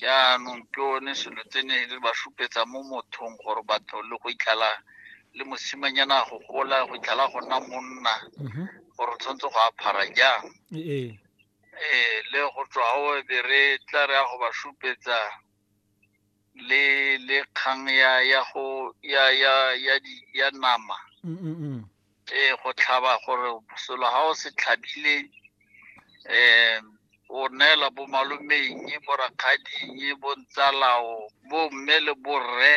jaanong ke one selo tse ne le ba supetsa mo mothong gore batho le go itlhala le mosimanyana go gola go itlhala go nna monna mhm. gore o tshwanetse go aphara jang ee le go tswa go be re tla re ya go ba supetsa le le kgang ya ya go ya ya ya di ya nama mm, mm, mm. ee go tlhaba gore selo ga o se tlhabile um o neela bo malomeng bo rakgading bo ntsalao bo mme le borre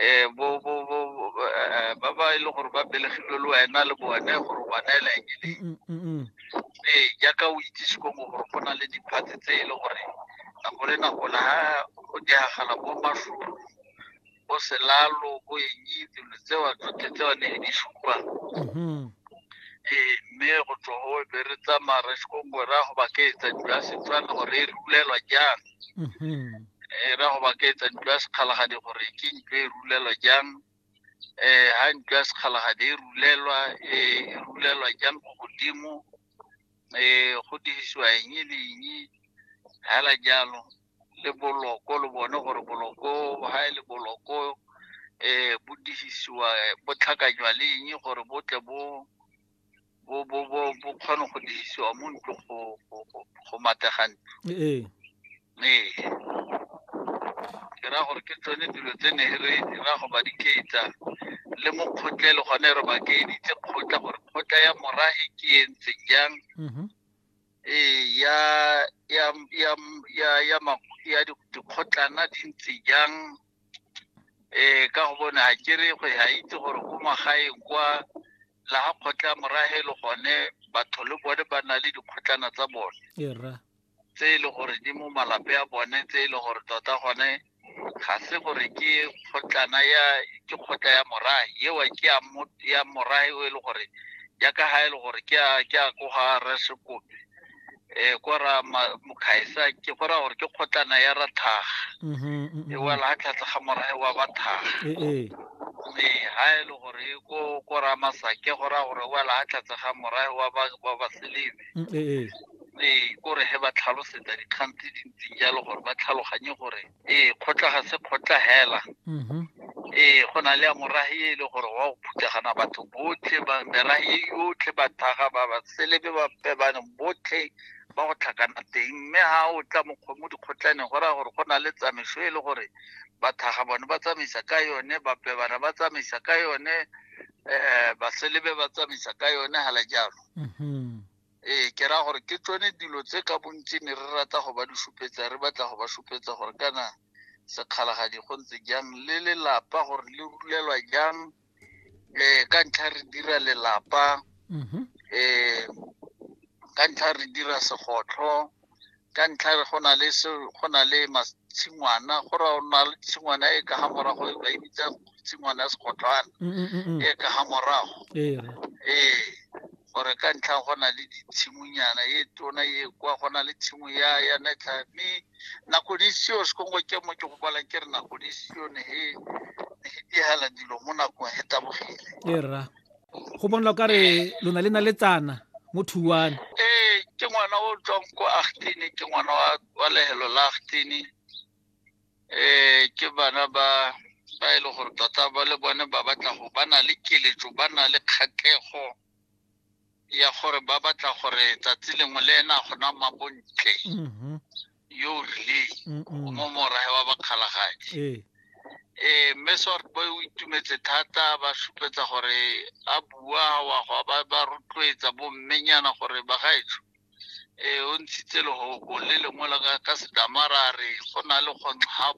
um bo bo bo eh, ba ba e le gore ba belegilwe le wena le bone gore ba neela eng e leng Mm, mm, mm. ee jaaka o itse sekomo gore go na le diphatse tse e le gore nako le nako la ga go diagala bo matlholo bo selalo bo eng dilo tsewa tsotlhe tsewa ne di supa mm-hmm. ee mme go tswa go be re tsamaya re sekongwe ra go baketsa dilo ya setswana gore e rulelwa jang mm-hmm. ee ra go baketsa dilo ya sekgalagadi gore ke ntlo e rulelwa jang um ha ntlo ya sekgalagadi e rulelwa e rulelwa jang go godimo um go dirisiwa eng le eng fela jalo le boloko lo bone gore boloko ga e le boloko eh bo disisiwa eh, bo tlhakanywa le eng gore bo tle bo bo bo bo bo kgone go disisiwa mo ntlo go go- go- go matega ntlo ee ee ke ra gore ke tsone dilo tse ne re dira go ba dikeetsa le mo kgotleng le gone re ba keeditse kgotla gore kgotla ya mora e ke e ntseng jang Mhm. ee ya ya ya ya ya ma- ya di- dikgotlana di ntse jang eh ka go bona ha ke re go ya itse gore ko magaeng kwa la ga kgotla morahe le gone batho le bone ba na le dikgotlana tsa bone e rra tse e le gore di mo malape a bone tse e le gore tota gone ga se gore ke kgotlana ya ke kgotla ya morae eo ke ya mo ya morae o e le gore ya ka ha e le gore ke a ke a ko ga re se kope eh ko ra ma- mokhaisa ke go ra gore ke kgotlana ya ra tlhaga Mhm, e mhm. wela ha tlhatlha ga morae wa ba tlhaga Eh, eh. mme ha e le gore e ko ko ra masake go ra gore wela ha tlhatlha ga morae wa ba wa ba selebe Mm, eh, eh. ee kore he ba tlhalosetsa dikgang tse dintseng jalo gore ba tlhaloganye gore ee kgotla ga se kgotla hela mhm. ee go na le ya morahi e le gore wa go phuthagana batho botlhe merahi yotlhe bathaga ba ba selebe ba pebane botlhe ba go tlhakana teng mme ga o tla mokgomo dikgotlhaneng go raya gore go na le tsamaiso e le gore bathaga bone ba tsamaisa ka yone bapebana ba tsamaisa ka yone um baselebe ba tsamaisa ka yone hala jalo mhm. ee ke raya gore ke tsone dilo tse ka bontsi ne re rata go ba di supetsa re batla go ba supetsa gore kana sekgalagadi go ntse jang le lelapa gore le rulelwa jang um ka ntlha re dira lelapa um ka ntlha re dira segotlho ka ntlha re go na le se go na le tshingwana go ra ona le tshingwana e ka ga morago e ba e bitsa tshingwana ya segotlwana mm, mm, mm, e ka ga morago ee, ee gore ka ntlha go na le ditshimonyana e tona e kwa go na le tshimo ya ya netlha mme nako di seo sekongo ke mo ke go kwala ke re nako di seo ne e ne e dihela dilo mo nakong e tabogile e rra go bonla o kare lona le na le tsana mo thuane ee ke ngwana o tswang ko agtene ke ngwana wa lehelo la agtene um ke bana ba ba e le gore tota ba le bone ba batla go ba na le keletso ba na le kgatlego ya gore ba batla gore tsatsi lengwe le ena gona mabontle mm-hmm. yo o rileng o mo morae wa bakgalagadi ee eh, mme sort boy o itumetse thata ba supetsa gore a bua wa go ba ba rotloetsa bommenyana gore bagaetsho um o ntshitse lehoko le lengwe la ka sedamara re go na le kgontlhabo